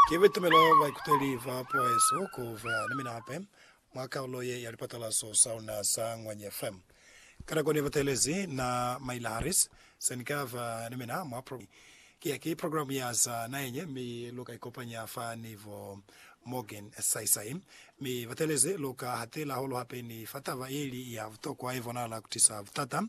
Ki bitumelo ba baikuteli ba poeso ku ba ni mina hape mwa kalulo ye ya lipatalaso sa luna sa Ngwanye FM. Ka nako ne batelezi na Maila Harris, se ni ka ba ni mina mwa programe ki ya ki programe ya za naheñe, mi lu ka ikopanya fa ni bo Morgan saisai. Mi batelezi lu ka hatela hahulu hape ni fa taba ye ili ya butokwa ye bonahala ku tisa butata,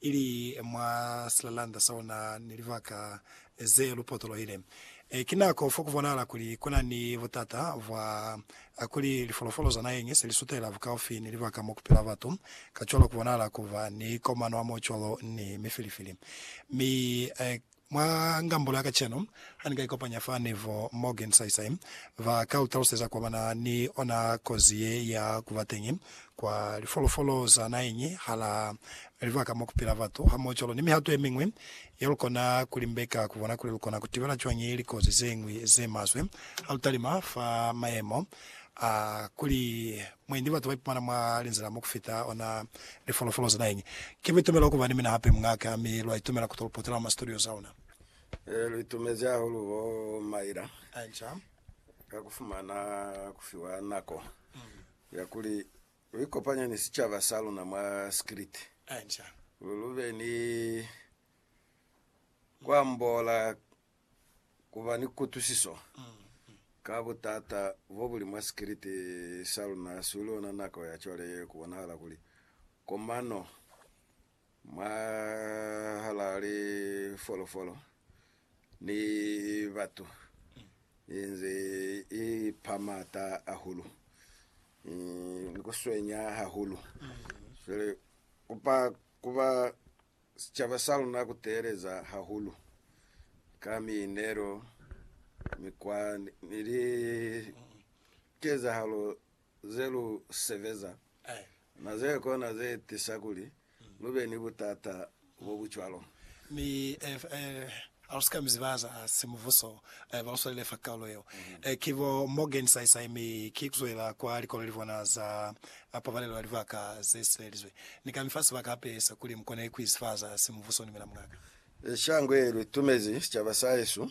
ili mwa silalanda sa luna ni libaka Ze lupotoloile. E ki nako fo ku bonahala kuli ku na ni butata bwa kuli lifolofolo za naheñi se li sutela bukaufi ni libaka mo ku pila batu, kacwalo ku bonahala ku ba ni komano ya mo cwalo ni mifilifili. Mi mwa ngambulo ya kacenu, ha ni ka ikopanya fa ni bo Morgan saisai, ba ka lu taluseza kwa ba na ni ona kozi ye ya ku ba teñi kwa lifolofolo za naheñi hala libaka mo ku pila batu, hamohocwalo ni mihato ye miñwi Ya lukona ku limbeka ku bona kuli lukona ku tibela cwañi likozi ze ñwi ze maswe ha lu talima fa mayemo a kuli mwendi batu ba ipumana mwa linzila mo ku fita ona lifolofolo za naheñi. Ki buitumelo ku ba ni mina hape muña'ka, mi lwa itumela ku to lu potela mwa ma studios a luna. Ee, lu itumezi hahulu bo Myra ka ku fumana ku fiwa nako ya kuli Lu ikopanya ni sicaba sa luna mwa Skriti. Lu be ni ku ambola ku ba ni kutwisiso ka butata bo bu li mwa Skriti sa luna. Hasi ku li ona nako ya cwale ye ku bonahala kuli komano Mwahal'a lifolofolo ni batu i nze i pa m'ata ahulu, ni ku swenya hahulu. Cwale ku pa ku ba sicaba sa luna ku teeleza hahulu ka miinelo, mikwa ni likezahalo ze lu sebeza na ze kona ze tisa kuli lu be ni butata bo bu cwalo. Mi ha lu si ka mi ziba za simubuso ba lu swalile fa kaulo yeo, ki bo Morgan Saisai, mi ki ku zwela kwa likolo li bona za pabalelo ya libaka ze sibelizwe. Ni ka mi fa sibaka hape sa kuli mu kone ku izifa za simubuso ni mina muñ'a ka. Shango ye lu tumezi sicaba sa hesu